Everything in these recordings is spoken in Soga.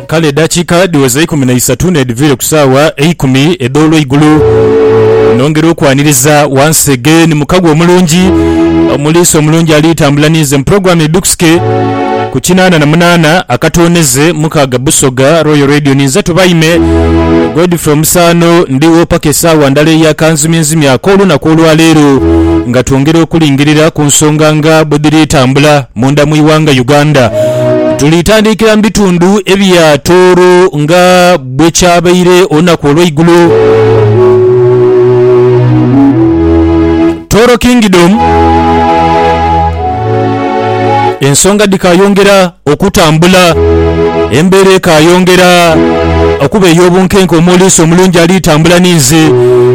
Kale edaakiika dhiweze eikumi na isatu n'edhiviire ku saawa eikumi edh'olweigulo, nongera okwaniriza once again mu kagwa omulungi, omuliisa omulungi ali tambula ninze mu pulogulaamu Edhuuksike ku kinaana na munaana akatooneze mukaaga Busoga Royal Radio. Ninze tubaime Godfrey Omusaano, ndigho paka esaawa ndala eya kanzimyenzimye ak'olunaku olwaleero nga twongera okulingirira ku nsonga nga bwe dhiri tambula. Munda mu ighanga Uganda, tuli tandikira mu bitundu ebya Tooro nga bwe kyabaire olunaku olweigulo. Tooro Kingdom ensonga dhikayongera okutambula, embeera ekayongera okuba ey'obunkenke omwoliisa omulungi ali tambula ni nze.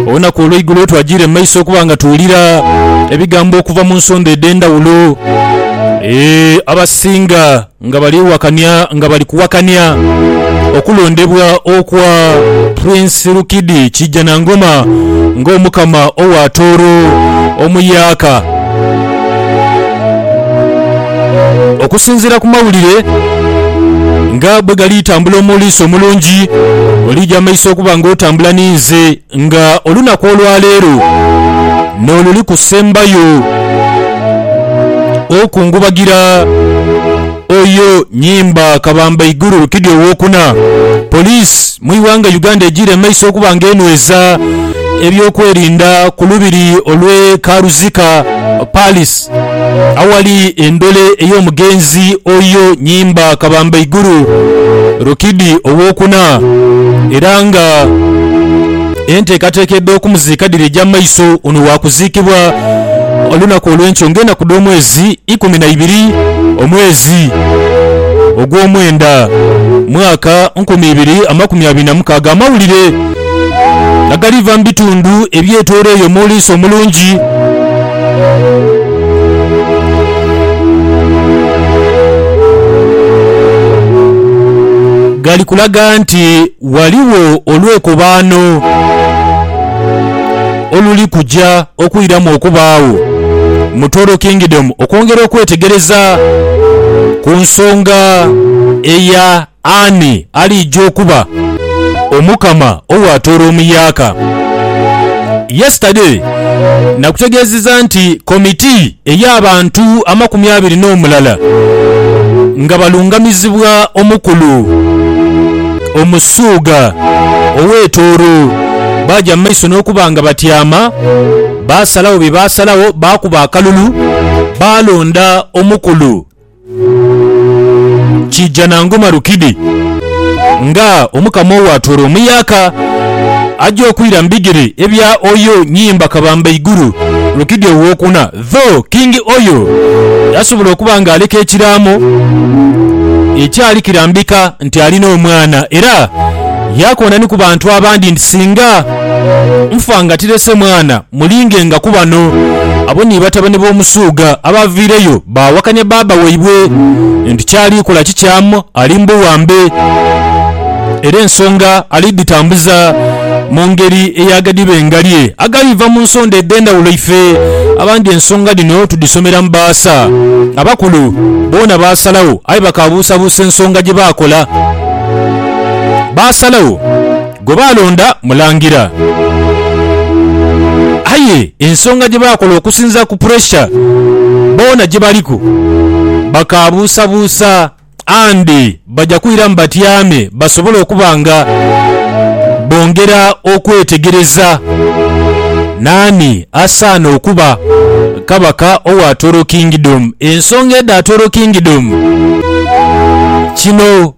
Olunaku olweigulo twagiire mu maiso okuba nga tuwulira ebigambo okuva mu nsondha edh'endhawulo. Eeh, abasinga nga bali wakania nga bali kuwakania okulondebwa okwa Prince Rukidi Kijanangoma nga Omukama owa Tooro omuyaaka. Okusinzira ku mawulire nga bwegali tambula omuliisa omulungi oli jamaiso okuba nga otambula ninze. Nga olunaku olwaleero n'oluli kusembayo okungubagira oyo Nyimba Kabamba Iguru Rukidi Owokuna, Police mu ighanga Uganda ejiire mu maiso okuba nga enweza eby'okwerinda ku lubiri olw'e Karuzika Palace. Christ. Awali endole ey'omugenzi oyo nyimba kabamba igulu Rukidi ow'okuna era nga enteekateeka edh'okumuziika dhiri egya maiso. Ono waakuziikibwa olunaku olw'enkyo ng'enaku dh'omwezi ikumi na ibiri omwezi ogw'omwenda mwaka nkumi ibiri amakumi abiri na mukaaga. Amawulire. nga galiva mu bitundu ebyetooleire omuliisa omulungi. Gali kulaga nti ghaligho olwekobaano oluli kuja okwiramu okubaagho mu Toro Kingdom okwongera okwetegereza ku nsonga eya Ani aliija okuba Omukama ow'atoola omuyaaka? Yesterday nakutegeezeza nti komiti ey'abantu amakumi abiri n'omulala nga balungamizibwa omukulu Omusuuga ow'e Tooro baaja mu maiso n'okuba nga batyama, baasalagho bye baasalagho, baakuba akalulu baalonda omukulu Kiija na ngoma rukidi nga Omukama ow'atoola omuyaaka, aja okwira mu bigere ebya Oyo Nyimba Kabambaiguru Rukidi Ow'okuna. Tho King Oyo yasobola okuba nga aleka ekiraamo ekyali kirambika nti alina omwana era yaakoona ni ku bantu abandi nti singa nfa nga tirese mwana, Mulingenga ku bano. Abo ni batabane b'omusuugha abaaviireyo baawakanya baaba waibwe nti ky'ali kola kikyamu, ali mbuwambe, era ensonga ali dhitambuza mu ngeri ey'aghadiba engalye agaliiva mu nsonda edh'endhawulo. Ife abandi ensonga dhino tudhisomera mu baasa. Abakulu boona baasalagho aye bakaabuusabuusa ensonga gye baakola. Baasalagho. gwe baalonda Mulangira. Aye ensonga gye baakola okusinziira ku puresha boona gye baliku, bakaabuusabuusa Andy baja kwiramu batyame basobole okuba nga bongera okwetegereza naani asaana okuba Kabaka owa Toro Kingdom. Ensonga edha Toro Kingdom kino.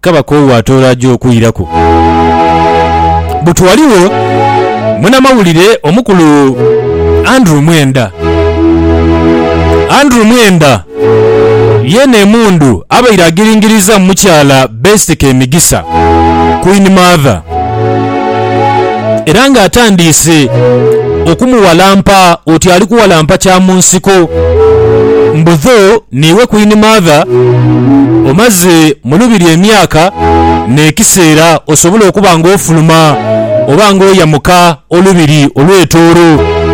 Kaba k'owo atooro aja okwiraku. Buti ghaligho munamawulire omukulu Andrew Mwenda. Andrew Mwenda yeene emundu abaire agiringirizaamu mukyala Best Kemigisa, Queen Mother, era nga atandiise okumuwalampa oti ali kuwalampa kyamunsiko mbu dho N'iwe Kwini Martha, omaze mu lubiri emyaka n'ekiseera osobole okuba ng'ofuluma oba ng'oyamuka olubiri olw'etooro.